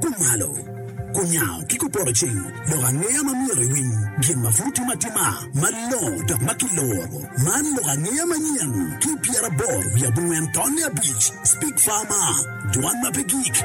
Kumalo, kunyango ki kupoto cing, lok angeya ma myero iwiny, gin ma pud timo atima malongo dok ma kiloro, man lok angeya manyen, ki pyeraboro wiye abongwen tonne abic, Speak Farmer, Jwan ma pe gik.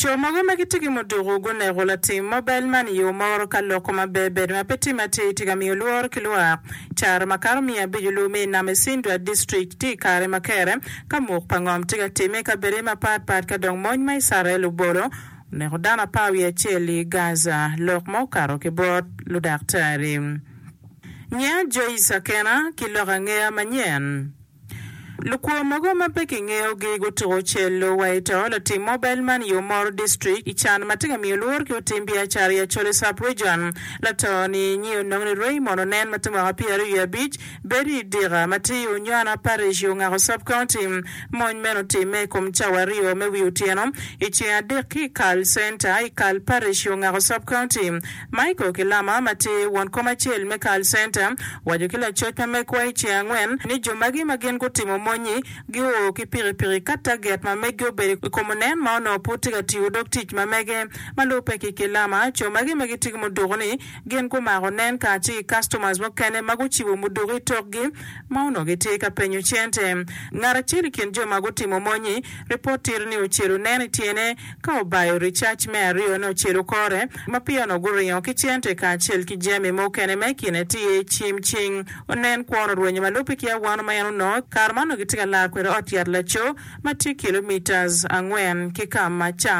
Co mogo ma gitye ki muduku guneko latim mobel man i yo moro ka loko ma ber bedo ma pe timme atir tye ka miyo lworo ki lwak. Caro makato miya abico luwe me i Nam Isindra District tye i kare ma kere ka muk pa ngom tye ka timme i kabedde mapat pat ka dong mony ma Icrael obolo oneko dano apar wiye acel i Gaza lok ma okato ki bot ludaktari. Ngeya Joyce Akena ki lok angeya manyen. Lukwo mogo ma pe kingeyogi gutuko celo wa i to latim mobile money i Omoro District i can ma tye ka miyo lworo ki lutim biacara i Acholi Sub Region. Lato ni nyi onongo ni Raymond Onen ma tye mwaka pyeraryo wiye abic bedo i Dika ma tye i Onywana Parish i Ongako Sub County. Mony meno otimme i kom cawa aryo me wi otyeno i ceng adek ki i Kal Center i Kal Parish i Ongako Sub County. Michael Kilama ma tye won kom acel me Carl Center owaco ki lacoc ma megwa i ceng angwen ni jo magi ma gin gutimo mony-nyi gio ki pikipiki ka taget ma meggi obedo i kom onen ma onongo pud tye ka tiyo dog tic ma mege. Ma lubbe ki Kilama, co magi ma gitye ki muduku-ni gin gumako onen kacel ki customers mukene ma gucibo muduku i tokgi ma onongo gitye ka penyo cente. Ngat acel i kin jo ma gutimo mony-nyi, ripot tito ni ocelo onen i tyene, Ka obayo ricac me aryone ocelo kore, ma piyono guringo ki cente kacel ki jami mukene ma i kine tye cim cing. Onen kwor orwenyo ma lubbe ki awano ma en onongo, kare ma onongo gitye ka laro kwede ot yat laco ma tye kilomitas angwen ki ka ma can.